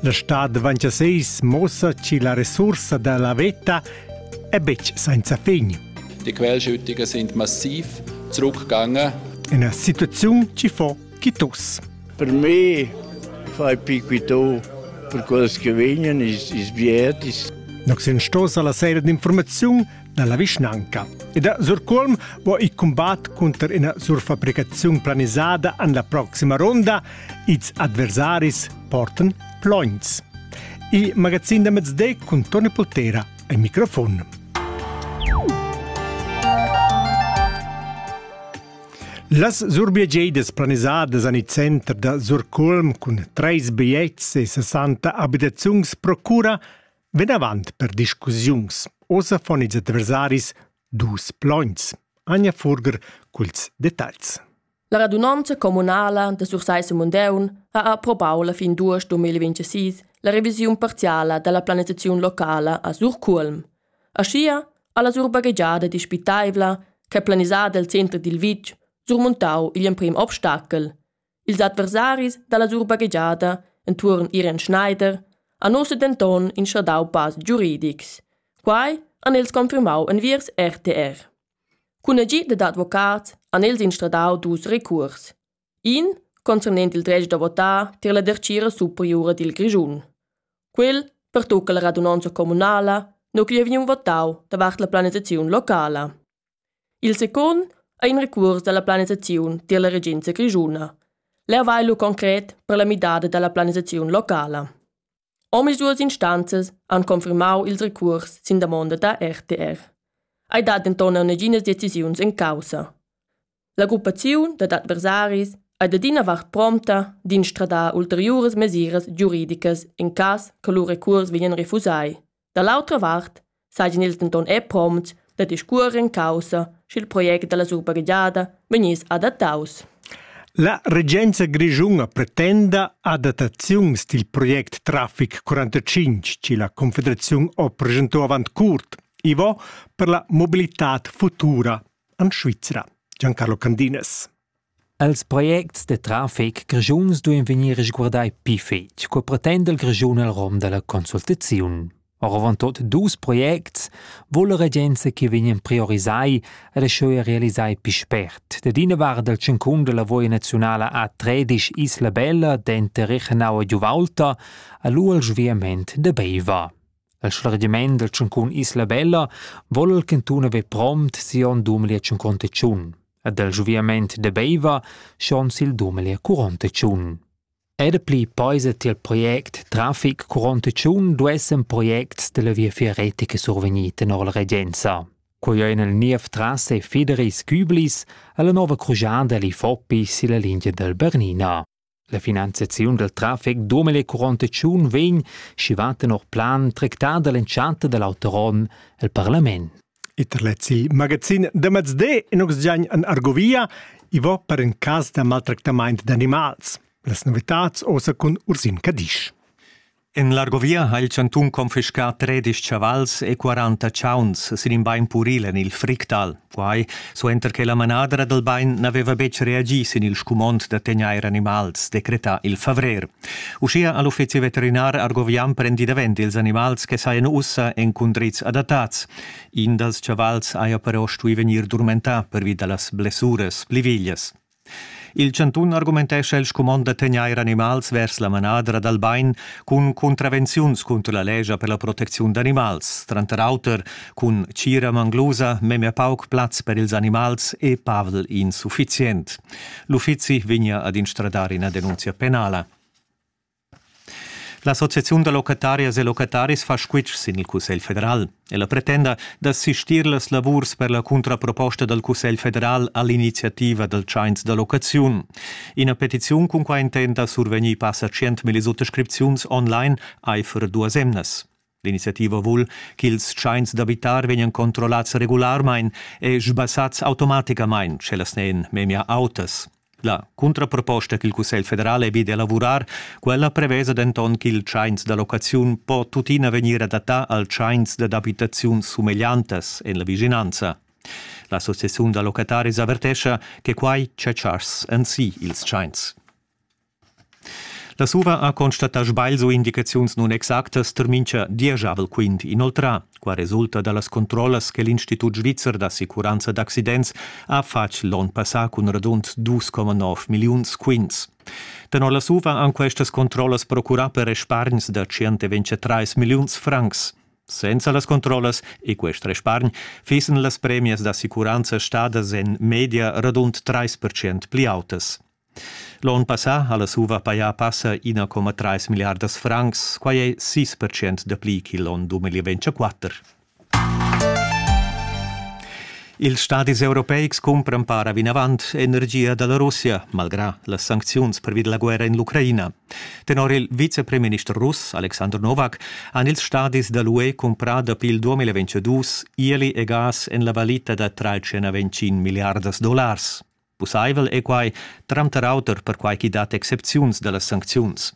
La stad davanti a seis mossa chi la resursa da la veta è betg senza fin. Die Quellschüttungen sind massiv zurückgegangen. Eine Situation ci fo quitus. Per me fai piquito per quels che vegnan is, is biet is. Nox sto la sera d'informaziun dalla vischnanca. Ed a Surculm vo il combat cunter ina surfabricaziun planisada an la proxima ronda. Ils adversaris portan plogns. Il magazin da mezday con Tony Potera al microfon. Las surbiegeidas planisadas an il center da Surculm cun treis bigliets e 60 abitaziuns procura Vinavant per discussiuns. Ossa fon ils adversaris dus plogns. Anja Furger culs detagls. La radunanza communala de Sursaisse Mundeun ha approbau la fin d'aost 2026 la revisiun parziala della planisazione locala a Surculm. Aschia ha la surbaghegiada dispitaivla che planisada il center dil vitg surmontau igl emprim obstacel. Ils adversaris dalla surbaghegiada entuorn Irene Schneider han ussa denton inschradau pass giuridics. Quai han els confirmau enviers RTR. Cun agid dad advocats han els instradau dus recurs. In concernent il dretg da votar tier la dertgira superiura dil Grischun. Quel pertucca la radunonza communala, no chi vegn votau davart la planisaziun locala. Il secund ei in recuors dalla planisaziun tier la regenza grischuna. Leu vai lu concret per la midada dalla planisaziun locala. Omisduas instanzas han confirmau ils recuors sin damonda da RTR. Ei dat denton neginas decisiuns en caussa. La gruppaziun dad adversaris ei da d'ina vart promta d'instradar ulteriuras mesiras giuridicas in cass che lu recuors vegnan refusai. Da l'autra vart sajan ils denton er promts da discuorer en caussa, sch'il project dalla surbagliada vegniss adattaus. La regenza grischuna pretenda adattaziuns dil project Traffic 45 che la Confederaziun ho presentò avant curt, Ivo, per la mobilitad futura en Svizra. Giancarlo Candinas. Els projects da trafic grischuns duein vegnir resguardai pli fetg, co pretenda il Grischun el rom dalla consultaziun. Oravontut dus projects vul la regenza che vegnan priorisai ed aschia realisai pli spert. Dad ina vart dal tschincun della lavoi nazionala a Tredisch Isla Bella denter Rechenau e Giuvalta ha lu il sviament da Beiva. El schlargiament dal tschuncun Isla Bella vol el ch'entun haver prompt siu onn dumeli a tschunconta tschun ed el sviament de Beiva schon sil dumeli a curonta tschun. Era pli peisa tiel project Trafic curonta tschun duessen projects della viafier retica survegnir tenor la regenza. Quei ein el niev trasse Fideris Küblis alla nova crujada li Foppi silla linea del Bernina. La finanziaziun dal traffic domel e curontatschun vegn, schi va tenor plan tractada l'entschatta da l'auter onn el parlament. Iter lezzi magazin da mezde in oxgiagn an Argovia i va per in cas da maltractamaint d'animals. Las novitats osa cun Ursin Cadisch. En l'Argovia ha il chantun confiscà tredisch chavals e quaranta chauns sin in bain puril en il Fricktal. Quai suenter che la manadra dal bain n'aveva betg reagì sin il scumond da tegnair animals, decretà il favrer. Uschia ha l'uffizi veterinar argovian prendi davent ils animals che sajan ussa en cundrids adattats. In dals chavals haja però stuì vegnir durmentà pervi da las blessuras pli veglias. Il chantun argumentescha il scumond da tegnair animals vers la manadra dal bain cun contravenziuns cunter la lescha per la protecziun d'animals, tranter auter cun tgira manglusa memia pauc plaz per ils animals e pavel insuffizient. L'uffizi vegnia ad instradar ina denunzia penala. L'associaziun da locatarias e locataris fa squitsch sin il Cussegl federal. Ella pretenda d'assistir las lavurs per la cuntraproposta dal Cussegl federal a l'iniziativa dal tschains da locaziun. Ina petiziun cun quai intenta survegnir passa 100.000 suttascripziuns online aifer duas emnas. L'iniziativa vul ch'ils tschains d'abitar vegnan controllats regularmain e sbassads automaticamain, sch'ellas n'èn memia autas. La cuntraproposta ch'il Cussegl federal è vid elavurar, quella prevesa denton ch'il tschains da locaziun po tuttina vegnir adattà al tschains dad abitaziun sumegliantas en la vischinanza. L'associaziun da locataris avertescha che quai tschetschass en si ils tschains. La SUVA ha constatà sbagls u indicaziuns nunexactas tar mincha dieschavel quint. Inoltrà qua resulta da las controllas che l'Institut svizzer d'assicuranza d'accidents ha fatg l'onn passà cun radund 2,9 milliuns quints. Tenor la SUVA han questas controllas procurà per respargns da 123 milliuns francs. Senza las controllas e quest respargn fissen las premias d'assicuranza stadas en media radund 3% pli autas. L'on passà ha la SUVA pajà passa 1,3 milliardas francs, quai è 6 per cent dapli ch'il onn 2024. Ils stadis europeics cumpran para vinavant energia da la Russia, malgrà las sancziuns pervi da la guerra en l'Ucraina. Tenor il vicepremister russ Alexander Novak han ils stadis da l'UE cumprà dapi il 2022 ieli e gas en la valita da 325 milliardas dollars. Pussaivel è quai tranter auter perquai ch'i dat excepziuns da las sancziuns.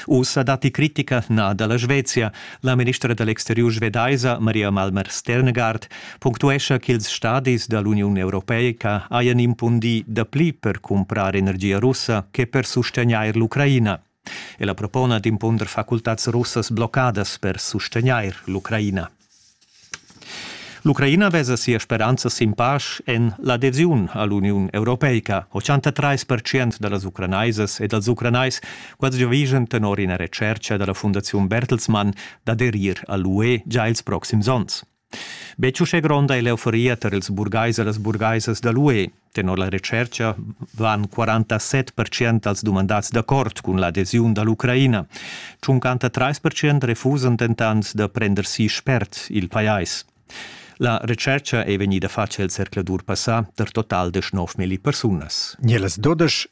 Ussa datti critica na da la Svezia. La ministra da l'exteriur svedaisa Maria Malmer Sternegard punctuescha ch'ils stadis da l'Uniun europeica hajan impundì dapli per cumprar energia russa che per sustegnair l'Ucraina. Ella propona d'impunder facultads russas bloccadas per sustegnair l'Ucraina. L'Ucraina vesa sia speranza sin pasch en l'adesiun a l'Uniun Europeica. 83% da las ucranaisas e dals ucranais quels giavischan tenor ina retschertga da la Fundaziun Bertelsmann d'aderir a l'UE gia ils proxims onns. Be uschè gronda è l'euforia tar ils burgais e las burgaisas da l'UE. Tenor la retschertga van 47 percent als dumandads d'accord cun l'adesiun da l'Ucraina. 53 refusan dentant da prender si spert il pajais. La retschertga è vegnida fatga il zercladur passà per total de 9 milli persunas. Nielas 12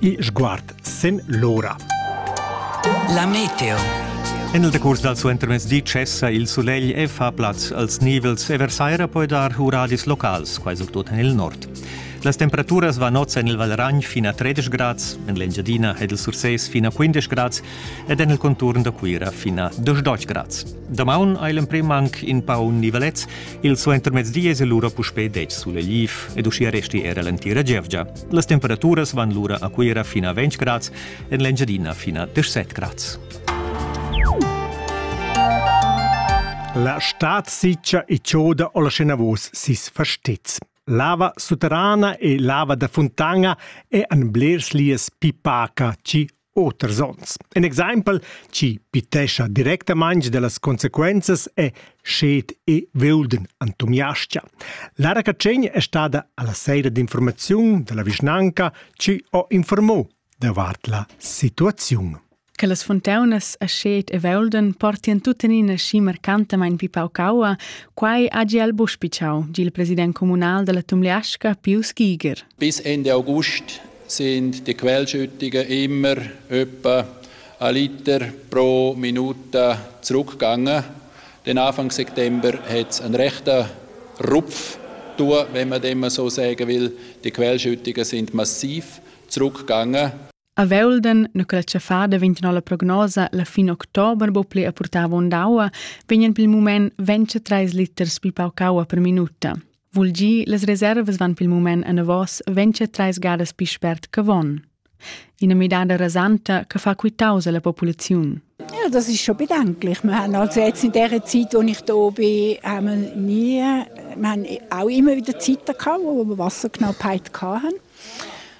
e sguard sen l'ora. La meteo. En il decurs dal suentermezdi cessa il sulegl e fa plaz als nivels e versaira poi dar uradis locals, quai surtut en il nord. Las temperaturas van oz en il Valragn fin a 13 grads, en l'Engiadina ed il Sursés fin a 15 grads ed en il conturn da Cuira fin a 12 grads. Damaun hai l'emprim anc in pau nivelets, il suentermezdi es lura puspè dec sulegliv ed uschia resti era l'entira gievgia. Las temperaturas van lura a Cuira fin a 20 grads, en l'Engiadina fin a 17 grads. La stad siccia e choda o la scenavos sis fastez. Lava sutterrana e lava da fontana e an blers lies pipaca ci oters onns. In exempel chi pitescha directamaing dellas consequenzas è Sched e Veulden an Tumiascia. Lara Catschegn è stada alla seira d'informaziun della vischnanca ci ho informò davart la situaziun. Che las fontaunas a Sched e Veulden portian tuttenina schi marcantamain pi paucaua, quai ha Giel Buspiciau, il president comunal della Tumliasca, Pius Giger. Bis Ende August sind die Quellschüttigen immer etwa ein Liter pro Minute zurückgegangen. Denn Anfang September hat es einen rechten Rupf tun, wenn man dem so sagen will. Die Quellschüttungen sind massiv zurückgegangen. A Velden, na quella fa daventano la prognosa, la fin october bo ple a portava ondaua, vegnan pel mument 23 liters pi pauc aua per minuta. Vul gi, las reservas van pil mument enavos ventscha treis gadas pi spert che von. Ina midada rasanta che fa quitaus alla populaziun. Ja, das ist schon bedenklich. Wir haben also jetzt in der Zeit, wo ich hier bin, haben wir nie, wir haben auch immer wieder Zeiten gehabt, wo wir Wasserknappheit hatten.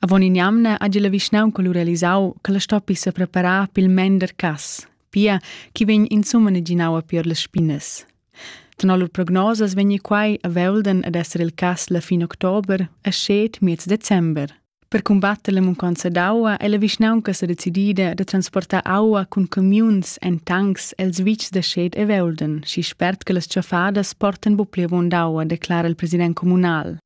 Avon in'jamna hagi la vischnaunca lu realisau che la stoppi sepreparar pil mender cass, pia ch'i vegn insumma neginaua pier las spinas. Tenor lur prognosas vegni quai a Velden ad esser il cass la fin october e scet miez december. Per combatter la munconza d'aua è la vischnaunca sa decidida da transportar aua cun camiuns en tancs els vitgs da scet e Velden, schi spert che las tschaffadas portan bu pli avon d'aua, declara il president communal.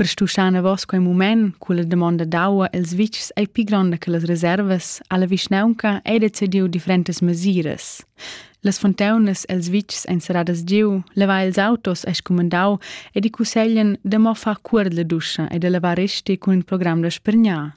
Per stuschar anavos quei mument culla damonda d'aua els vitgs ei pli gronda che las reservas, ha la vischnaunca ei decidiu differentas mesiras. Las fontaunas els vitgs ein serradas giu, leva ils autos ei scumandau ed i cusseglien da mo far cuor la duscha e da lavar resti cun il program da spregnar.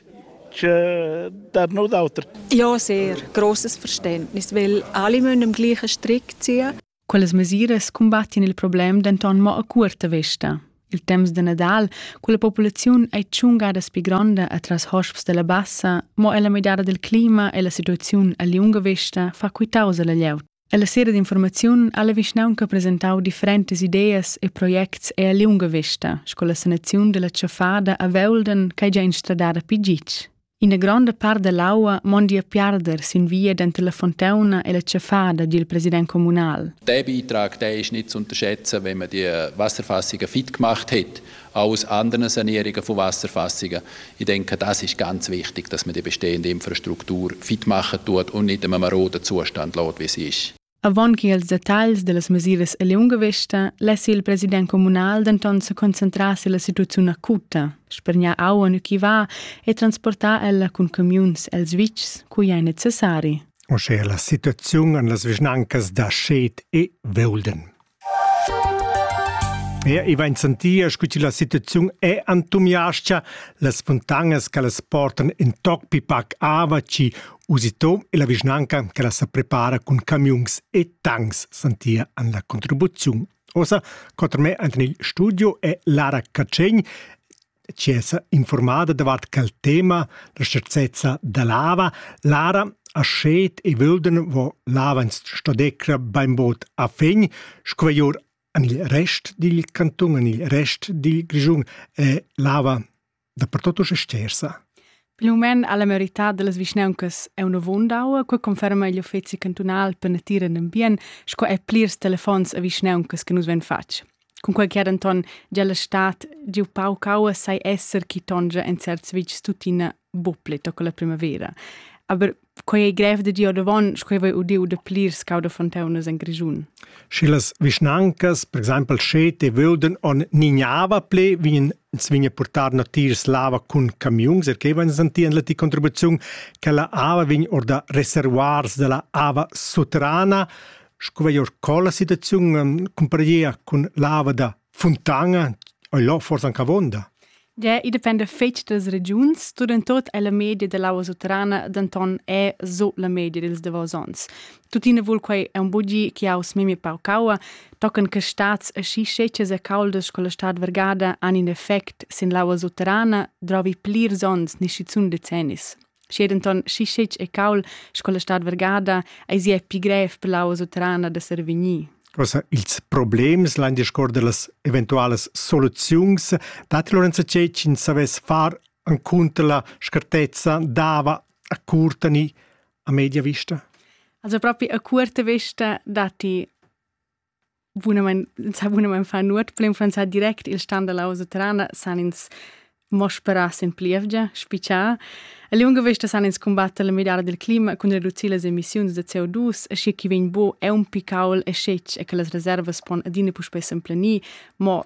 das noch d'auter. Ja, sehr. Grosses Verständnis, weil alle müssen am gleichen Strick ziehen. Quelles mesiras combattin il problem denton mo a curta vista. Il temps de Nadal, quella populaziun è tschungada spi gronda atras hosps della bassa, mo ella midada del clima e la situaziun a liunga vista fa quitausa la lleut. Ella sera d'informaziun ha la vischnaunca presentau differentas ideas e projects e a liunga vesta sco la sanaziun della tschaffada a Veulden ch'ei gia instradada pi gitg. Ina gronda part dell'aua mondi a piarder sin via denter la fontauna e la tschaffada, di il president communal. Der Beitrag, der ist nicht zu unterschätzen, wenn man die Wasserfassungen fit gemacht hat Alles andere Sanierungen von Wasserfassungen. Ich denke, das ist ganz wichtig, dass man die bestehende Infrastruktur fit machen tut und nicht einem maroden Zustand lässt, wie sie ist. Avon che als detagls dellas mesiras e liunga vesta less il president communal denton se concentrar sulla situaziun acuta, spergnar auen chi va e transportar ella cun camiuns els vitgs cui ei necessari. O sche la situaziun en las vischnancas da Schet e Veulden. Er ei vain sentia scu chi la situaziun è entumiascha, las funtanas che las portan in toc pi pac ava chi usitom e la vischnanca che las prepara cun camiuns e tancs sentia an la contribuziun. Osa, coter me ant in il studio è Lara Cacegn, Tschessa informada davart quel tema la schazzezza da lava, Lara ha schet e völden vo lavans stadecra bainbod a fegn, squaglior en il rest dil cantun, en il rest dil Grischun è lava dappertut usch stersa. Pil mument alla merità dellas vischnauncas è una vondau, quei conferma igl uffeci cantunal per natura e ambient, sco è plirs telefons a vischnauncas che nus ven fatg. Cunquai che denton gia la stad giu pauc aua sai esser chi tongia en certs vitgs tuttina buc pli toca la primavera. Aber quei ei grev da dir davon, sco voi udiu da plirs cauda fonteunas en Grischun. Sche las vischnancas, per exempel Schete, vöden on nignava ple, vegnen ins vigne portar natiers lava cun camiuns, er che vegn sentien la ti contribuziun che la ava vegn or da reservoirs della ava soterrana. Sco veglier co la situaziun cumparegia cun l'ava da Fontana ei là forsa anche avonda. Der i depende fetg das regiuns, studentot è la media da l'aua sutterrana denton è so la media dels davos ons. Tuttina vul quei è un bugi che aus memi paucaua, tocan che stats e schi scecas e caldas con la stad vergada han in effect sin l'aua sutterrana, drovi plirs ons, nisci zun decennis. Schi denton schi scetg e caul sco la stad vergada eis ei pi grev per la usotrana da survegnir. Also, ils problems lain discuor dellas eventualas soluziuns datti Lorenzo Cecin savess far encunter la scartezza dava a curtani a media vista? Also proprio a curta vista datti Bunamain, sa bunamain far nuot, per influenzar direct il stan da lausa terrana san ins mo sperar sin plievgia, spitschar. A liunga vesta san ins cumbatter la midada dil clima cun reducir las emissiuns da CO2, aschi che vegn buc aunc picaul e schetg e che las reservas pon adina puspei s'emplenir, mo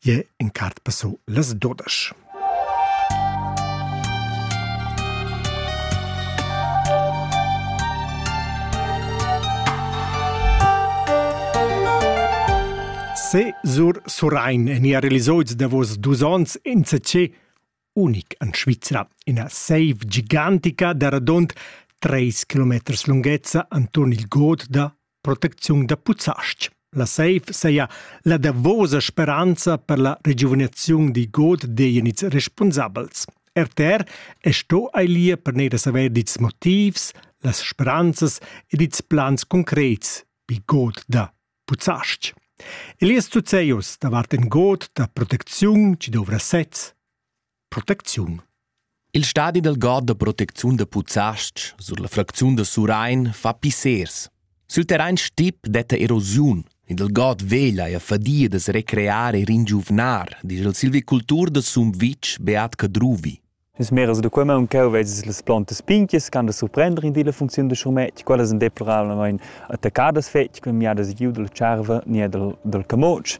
jeu encart passau las dudesch. Se sur Surrein en ia realisoids davos dus ons in CC unic en Svizra, ina seiv gigantica da radund treis kilometers lunghezza enturn il god da protecziun da Puzzastg. La seiv seia la davosa speranza per la regiuvinaziun di god dejenids responsabels. RTR è sto ailia per neir saver dits motivs, las speranzas ed dits plans concrets di god da Puzzastg. Elias Tuzeus davart in god da protecziun chi dovra sez. Protecziun. Il stadi dal god da protecziun da Puzzastg sur la fracziun da Surain fa pissers. Sül terrain stip detta erosiun, ed il god veglia e fadia da se recreare e ringiuvnar, dice il silvicultur da Sumvitg Beat Cadruvi. Las meras da quei maun cheu veses las plantas pinchias ch'han da surprender in di la funcziun da schurmetg. Quellas ein deplorablamein attaccadas fetg cun miadas giu dalla tscharva ni er dal, dal camotsch.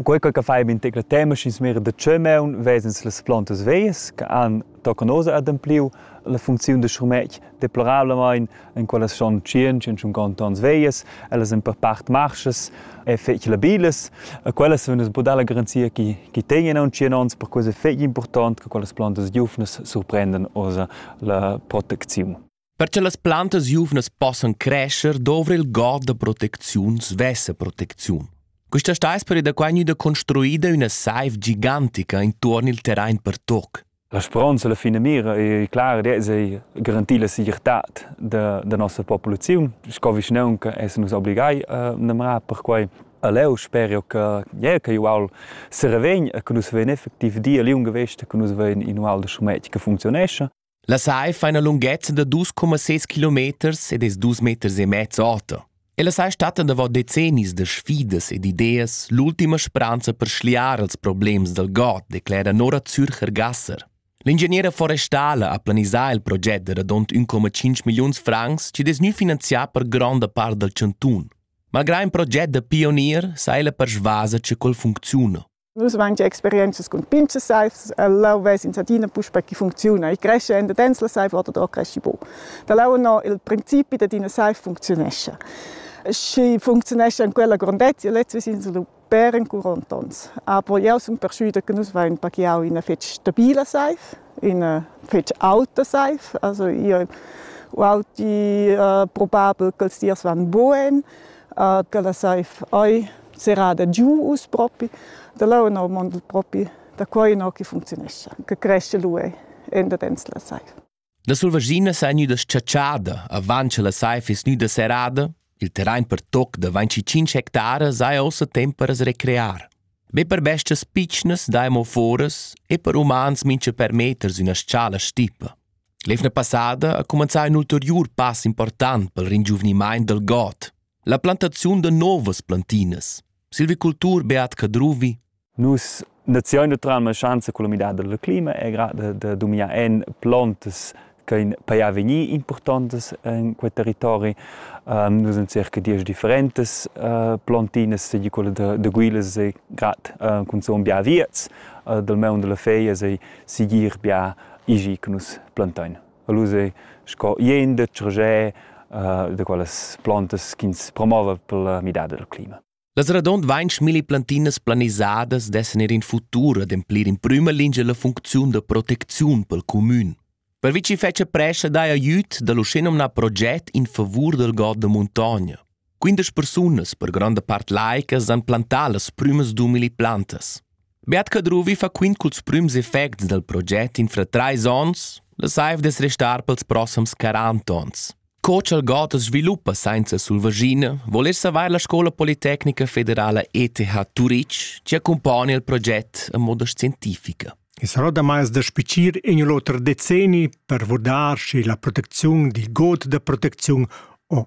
Quei che fai bin tecla tema sch'ins mira da tscheu maun vesens las plantas veias che han tocan oz adempliu la funcziun da schurmetg deplorablamain en quellas son 100-150 ans veias, ellas en per part marschas e fetg labilas. E quellas sun es budà la garanzia chi chi tegnan aunc 100 ans, per quai es fetg important che quellas plantas giuvnas surprendan oza la protecziun. Per che las plantas giuvnas possan crescer dovra il god da protecziun svessa protecziun. Questa sta esperi da qua gnüda construida üna saiv gigantica intuorn il terrain per toc. La speronza la finamira ei clara ed ei garantir la segirtad da, da nossa populaziun. Sco vischnaunca essen nus obligai a namrar per quei. E leu sper io che yeah, che ual servegn e che nus vein effektiv di a liunga vesta che nus vein in ual da schumet che functionescha. La sai fa ina lunghezza da dus coma seis kilometers ed es dus meters e mezzo auta. Ella sei stata davot decennis da sfidas ed ideas l'ultima speranza per schliar ils problems dal god, declera Nora Zürcher-Gasser. L'ingegniera forestala ha planisà il proget da radund 1,5 milliuns francs chi dess gnü finanzià per gronda part dal chantun. Malgrà ün proget da pionier sa ella persvasa cha quel funcziuna. Nus avain gia experientschas cun pinches saivs, leu ves ins adina puspei chi funcziuna. I cresce en dedens la saiv oder da cresci bu. Da leu no il principi dad ina saiv funcziunescha. Schi funcziunescha en quella grondezia, lez ves'ins lu per encuront ons. Aber jeu sun perschuida che nus vain pachiau ina fetg stabila saiv, ina fetg auta saiv. Also io ho auti uh, probabel ch'els dirs van bugen. ch'ella saiv ei serrada giu uss propi, da là ennà mond propi da qua ennà che funcziunescha, che cresce lu ei endadens la saiv. La sulvaschina sa gnüda s-chatschada avant che la saiv es gnüda serrada, il terrain per toc da 25 hectare sai ossa temp per as recrear. Be per bestas pitschnas dai mo foras e per umans mincha per meters üna s-chala stipa. L'evna passada ha cumanzà in ulteriur pass important pel ringiuvnimaint dal god, la plantaziun da novas plantinas. Silvicultur Beat Cadruvi Nus naziun naturalma schanza culla midada dal clima e gra da, da dominar en plantas che in paia vegnir importantas in quel territori. Um, nus en circa dieci differentes uh, plantinas, seigi quella da, da guilas e grat uh, cun son bia viets, uh, dal meun della feia sei sigir bia igi che nus plantain. Alus ei sco ien detg ragè uh, da quellas plantas ch'ins promova per la midada del clima. Las radond vainch milli plantinas planisadas dessen ir in futur ademplir in prüma lingia la funcziun da protecziun pel comün. Per vi ci fece prescia dai aiüt da l'uscinomna proget in favur del god da muntogna. Quindesch persunas, per gronda part laicas, han plantà las prümas d'umili plantas. Beat Cadruvi fa quint culs prüms effects dal proget in fra trais ons, la saiv d'es restar pels prossams 40 ons. Co cha'l god as sviluppa sainza sulvaschina, voler savair la Scola Politecnica Federala ETH Turitg ci accompagna il proget a moda scientifica. Es roda mais da spicir in l'oter decenni per vurdar schi la protecziun di god da protecziun o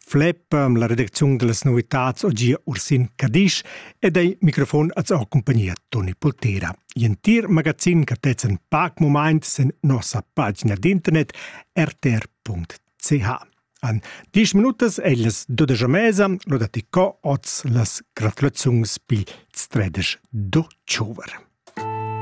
Fleppa la redacziun da las novitads o gia Ursin Cadisch ed ei microfon az ho compagnia Toni Poltera. I'entir magazin che tez en pac moment sen nossa pagina d'internet rtr.ch. An 10 minutas è las dudeja mesa, lo da ti co oz las gratulaziuns pi stredeš do tschouver.